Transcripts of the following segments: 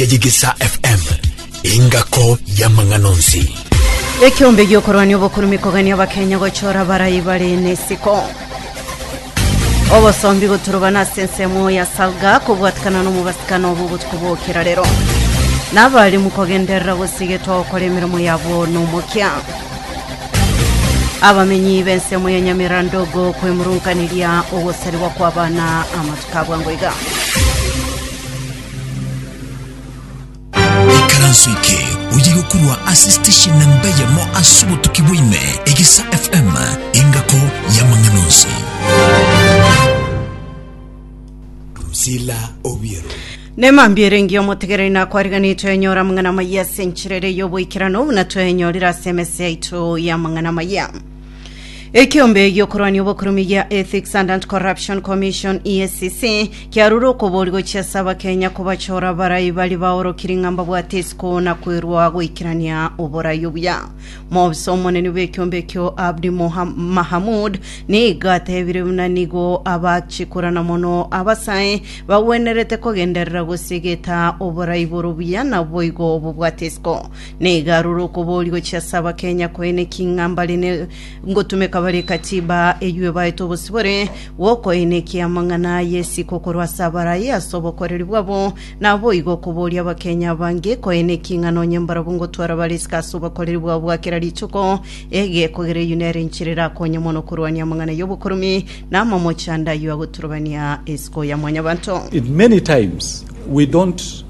ya Yigisa FM, engako y'amang'ana onsi. Ekiombe giokorwania obokurume kogania abakenya gochora abarai bare nesiko obosombi goturubana ase ensemo ya salga kobwatikana nomobasikana obo obotuko bokera rero nabarimu kogenderera gosigetwa gokora emeremo yabo nomokia abamenyi b'ensemo ya nyamera ndogo kwemurunkaneria ogosarigwa kw'abana amatuko abwango iga Ikaranso eke oye gokurwa ase station na mbeyemo ase obotuki bwaime egesa FM engako y'amang'ana onsi. Drusilla Obiero. nemambiere engiya omotegereri nakwariganetwe enyora amang'ana amaya ase enchera ere y'oboikerano buna twenyorire ase emese yaito y'amang'ana amaya Ekeombe gi'okorwania obokurumin gia Ethics and Anti-Corruption Commission, EACC, kiarure okobori gochia ase abakenya kobachora abarai baria baorokiri ng'a mbabwate isiko na kwerwa goikerania oborai obuya. Moobisa omonene bw'ekeombe ekio Abdi Moha- Mahamud nigo atebire buna nigo abachikorana mono abasae bagwenerete kogenderera gosiegeta oborai bore obuya na boigo bobwate isiko. Nigo aroro okobori gochia ase abakenya koeneki ng'a mbare ne ngotumeka bare Katiba eyio ebaete obosibore bw'okoenekia amang'ana a Yesi kokorwa ase abaraia ase obokoreri bwabo. Naboigo okoboria abakenya abange koeneki ng'a nonye mbarabwo ngotwara bare isiko ase obokoreri bwabo bwa kera rituko egekogera eyio nere enchera erakonye mono korwania amang'ana y'obokuromi na amamochando ayio agoturobania isiko ya Mwanyabanto. In many times we don't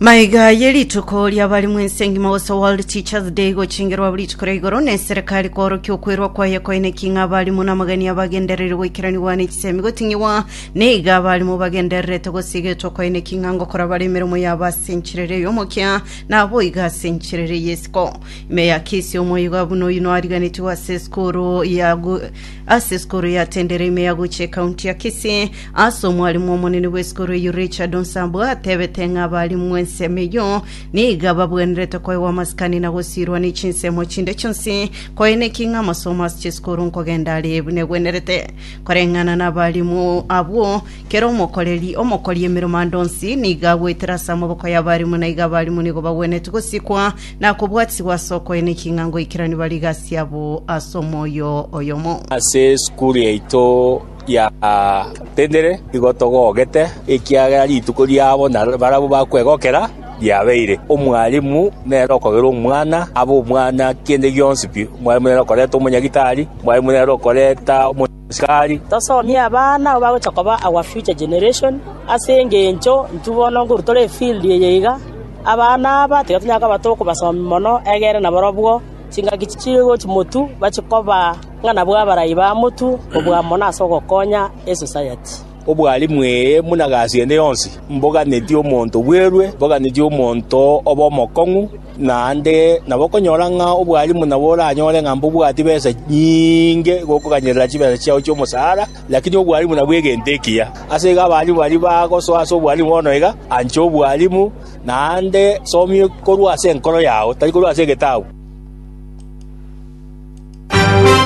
maiga ye rituko ria bari mwense engima gose world teachers day gochengerwa buri rituko ria igoro ne serikali kworokia okwerwa kwaye koine king'a abarimu na amagania bagendereire goikeranigwa ne chisemi goting'igwa neiga abarimu bagendererete gosigetwa koine king'a ngokora bare emeremo yabo ase enchirere y'omokia na aboiga ase enchirere y'esiko ime ya kisi omoigo abuna oyino ariganetiwe ase esukuru ya gu- ase esukuru ya tendere ime ya guche ekaunti ya kisi Ase omwarimu omonene bw'esikuru eyio Richard Onsambwe atebete ng'a abarimu bw'ensemo eyio niga babwenerete koegwa amasikani na gosiirwa ne chinsemo chinde chionsi koeneki ng'a amasomo ase chisikuru nkogenda are buna egwenerete. Koreng'ana nabarimu abwo, kera omokoreri omokori emeremo ande onsi niga agoetera ase amaboko y'abarimu na iga abarimu nigo bagwenereti gosikwa na kobwatisibwa ase okoeneki ng'a ngoikerania bare gasi yabo ase omoyo oyomo. Ase esukuru yaito giatendire, nigo togogete, ekiagera rituko riabo na barabwo bakwegokera riabeire. Omwalimu nere okogerwa omwana, abe omwana kende gionsi pi. Omwalimu nere okoreta omonyagitari, omwalimu nere okoreta omosikari. Tosomie abana nabo bagocha koba our future generation, ase engencho intwe bono nkoru tore efield eye iga, abana aba tiga tonyara koba tokobasomi mono egere nabarobwo chingaki chichigochi motu bachikoba. ng'a nabwo abarai ba motu oboamo na ase ogokonya esosayati. Obwalimu eye buna gasi ende yonsi, mboganeti omonto bwerwe, mboganeti omonto obe omokong'u, naende nabo okonyora ng'a obwalimu nabo oranyore ng'a mbobwati besa nyinge gokoganyerera chibesa chiao chi'omosara, lakini obwalimu nabwo egento ekiya. Ase igo abalimu baria bagosoa ase obwalimu bono iga, ancha obwalimu, naende somia korwa ase enkoro yao, tari korwa ase egetabu.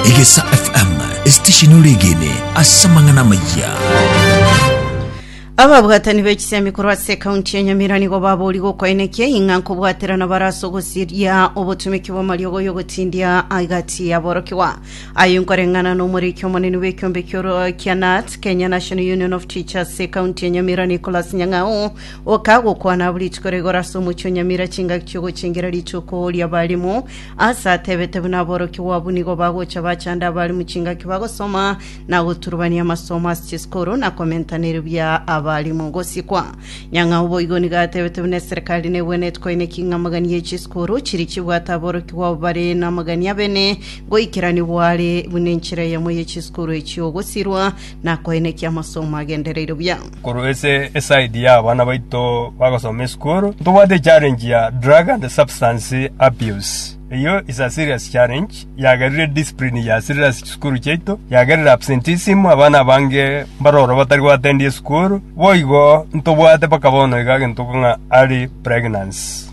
Egesa FM, esitesheni oregene ase amang'ana amayia. ababwatani b'ekisemi korwa ase ekaunti ya nyamira nigo babori gokoenekia ing'a nkobwaterana bare ase ogosiria obotumeki bw'amariogo y'ogotindia agati yaborokigwa aye nkoreng'ana n'omoriki omonene bw'ekiombe ki'oro kia nat kenya national union of teachers ase ekaunti ya nyamira nicolas nyang'au okagokwana abu rituko rigoro ase omochie o nyamira chingaki chi'ogochengera rituko ri'abarimu Ase atebete buna aborokigwa abwo nigo bagocha bachande abare mu chingaki bagosoma na goturubania amasomo ase chisikuru na komentana erio bia abarimu gosikwa. Nyang'au boigo nigo atebete buna eserekari nebwenereti koineki ng'a amagania ya chisikuru chiri chibwate aborokigwa abo bare namagania abene goikeranigwa are buna enchera eyemo ye chisikuru echio gosirwa na koenekia amasomo agendereire buya. korwa ase eside ya abana baito bagosoma esukuru ntobwate echallenge ya drug and substance abuse eyio is a serious challenge yagerire discipline yasirire ase chisukuru chiaito yagerire absenteeism abana abange mbaroro batari goatendia esukuru boigo ntobwate mpaka bono iga gento ng'a early pregnancy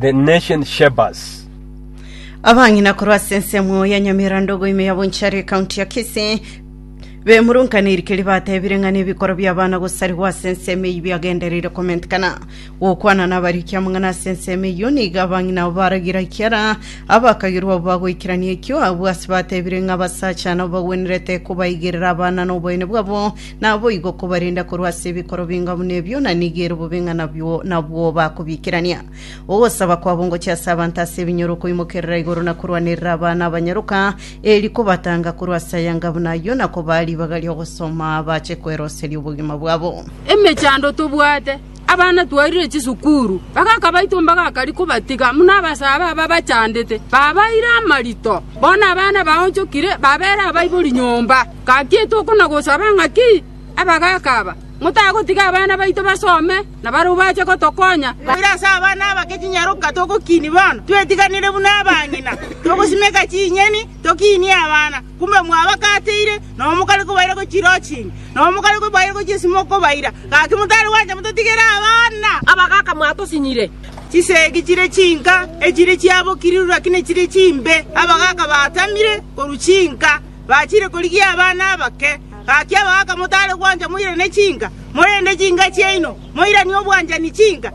The Nation Shapers. Abang'ina korwa ase ensemo ya Nyamirandogo ime ya Bonchari ekaunti ya Kisii bemurungane irikeri batebire ng'a nebikoro bi'abana gosarigwa ase ensemo eyio biagendereire komentekana gokwana n'abariki amang'ana ase ensemo eyio nigo abang'ina abo baragira ekiara abakagirwa abo bagoikerania ekio abwo ase batebire ng'a abasacha nabo bagwenerete kobaigerera abana n'oboyene bwabo Naboigo okobarenda korwa ase ebikoro binga buna ebio, na nigo ere obobe ng'a nabwo nabwo bakobiikerania. Ogosaba kwabo ngochia ase abanto ase ebinyoro koimokerera igoro na korwanerera abana abanyaroka, eeri kobatanga korwa ase ayanga buna ayio, na kobaa ribaga ri'ogosoma bache kweroseria obogima bwabo. Emechando tobwate. Abana twairire chisukuru, bagaka baito mbagakari kobatiga buna abasaaba aba bachandete, babaire amarito. Bono abana baonchokire babeera abaibori nyomba. Gaki etogokwa na gosaba ng'a ki? Abagaka aba, motagotiga abana baito basome, na barabwo bache gotokonya. Koira ase abana abake chinyaroka togokiini bono, twetiganere buna abang'ina, togosimeka chinyeni, tokiinie abana. Kumbe mwabakateire, nabo mokare kobaira gochia irochingi, nabo mokare kobaira gochia ase mokobaira, gaki motari gwancha mototigere abana. Abagaka mwatosinyire. Chisegi chire chinka, echire chiabokirirwe, lakini chire chimbe. Abagaka batamire korwa chinka, bachire korigia abana abake. Gaki abagaka motari gwancha moirane chinka, morende chinka chiaino moiranie obwanchani chinka.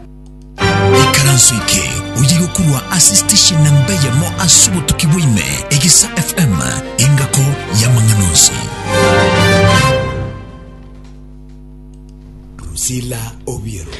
Ikaranso eke oyirwe korwa ase station na mbe yamo ase obotuki bwaime Egesa FM engako y'amang'ana onsi. Drusilla Obiero.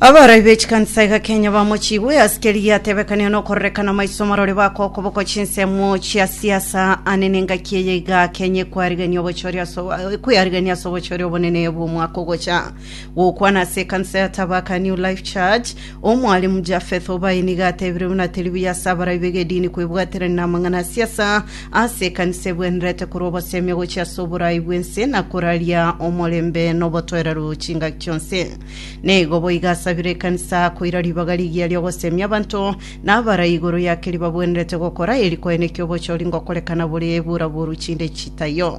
Abarai b'echikanisa iga Kenya bamochigwe ase keri giatebekanire nokorerekana maiso marore bako okoboko chinsemo chia siasa ane nengaki eye iga Kenya ekwariganio obochori ase obo- ekwariganio ase obochori obonene bw'omwaka ogocha Gokwana ase ekanisa ya Tabaka New Life Church, Omwalimu Japheth Obai nigo atebire buna teri buya ase abarai b'egedini kwebwaterania namang'ana a siasa ase ekanisa ebwenerete korwa obosemi gochia ase oboraai bw'ense na koraria omorembe na obotoereru chingaki chionsi. Nigo boigo asabire ekanisa koira ribaga rigiya ri'ogosemia abanto na abarai igoro yake ribabwenerete gokora eri koenekia obochori ngokorekana bore bura boru chinde chitaiyo.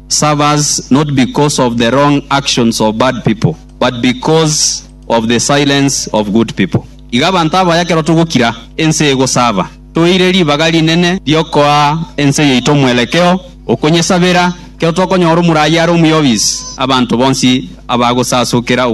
serve us not because of the wrong actions of bad people, but because of the silence of good people. Iga abanto abaya ekero togokira, ense egosaba. Toire ribaga rinene riokoa ense yaito omwerekeo okonyesabera. Ekero tokonyora omurayi are omuya obisi, abanto bonsi abagosasokera.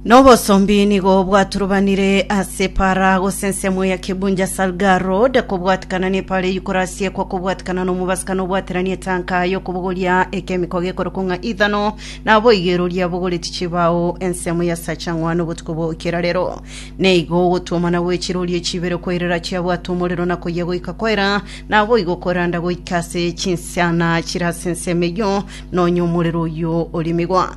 Nobosombi nigo bwaturubanire ase para gose ensemo ya Kibunja Salga Road kobwatikana nepara eyikorasie kwa kobwatikana nomobasikano obwateranie etanka yokobogoria ekemiko gekorokwa ng'a ithano nabo igeroria bogoreti chibao ensemo ya sachang'wa nobotuko bwokera rero neigo ogotwomana gwe chirorio chibere koirera chiabwata omorero na koyia goika kwaera nabo igo koranda goika ase chinsiana chire ase ensemo eyio nonya omorero oyio orimigwa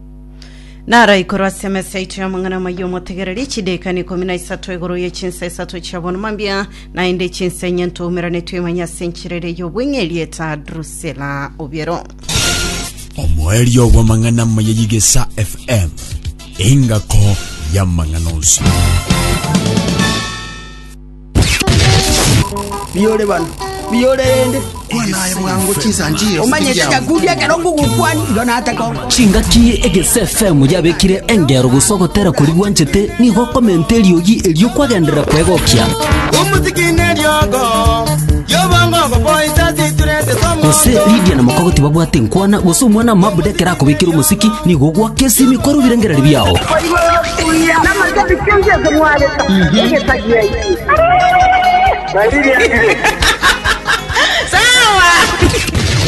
Naraikorwa ase emesa yaito y'amang'ana amaya omotegereri, chideekani ikomi na isato igoro ye chinsa isato chia bono mambia, naende chinsa enye ntoumerane toimanye ase enchera ere y'obweng'e erieta Drusela obiero. omoerio bw'amang'ana amaya y'egesa fm engako y'amang'ana onsi Biyore bana, biyore rende. Omanyete egekundi ekero ngogokwani, igo nataka oko. Chingaki egese FM yabekire engero gose ogotera kori gwanchete nigo okomenta eriogi erio kwagenderera kwegokia gose Lydia na Mokogoti babwate nkwana gose omwana mabuda ekero akobekire omosiki nigo ogwaka esimi kwarobire ngerari biao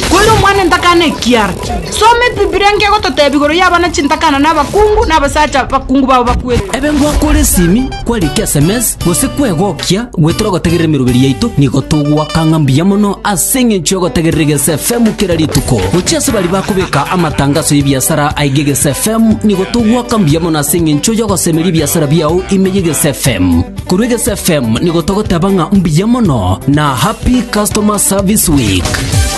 Kore omwana entakana ekiara. Soma Ebibilia enke egototebia igoro y'abana chintakana na abakungu na abasacha bakungu bao bakwete. Ebe ngwakore esimi kwarikire sms Gose kwegokia goetera ogotegerera emeroberi yaito, nigo togoaka ng'a mbuya mono ase engencho y'ogotegerera Egesa FM kera rituko. Gochia ase baria bakobeka amatangaso y'ebiasara aige Egesa FM, nigo togoaka mbuya mono ase engencho y'ogosemeria ebiasara biao ime y'Egesa FM. Korwa Egesa FM nigo togoteba ng'a mbuya mono na Happy Customer Service Week.